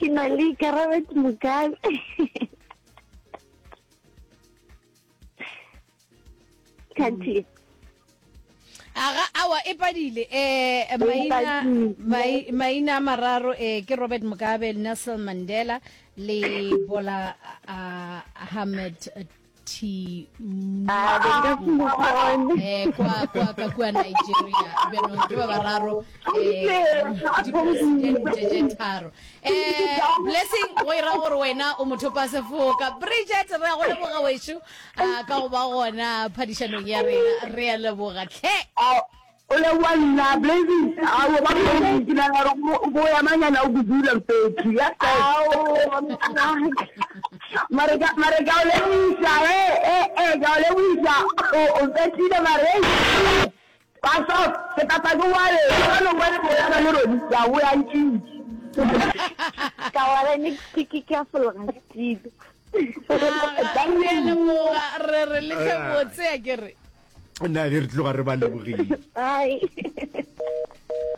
ke na le ikarabet mokabe kati aga awa e padile um maina a mararo um ke robert mugabe nelson mandela le bola uh, ahmed thi eh, kwa kwa ka kua nigeria bjanong ke ba bararo eh, dipresidente tharo eh, blessing go ira gore wena o motho pa sefoka bridget re ya go leboga wešo ah, ka go ba gona phadišanong ya rena re ya leboga tlhe O leboa nna Blazing aowa ba Blazing ke nagana gore mo- moya manyana o budula mfethu ya mare ka mare ka o leboisa e e e ka o leboisa o o fetile mare ei ba so ke tata ke wale ka no ba le moya ba le rodi ya o ya ntšitse ka wale ne ke ke ke a fologa ntšitse Aga, re a leboga re re letle botse a ke re nna ge re tloga re ba lebogile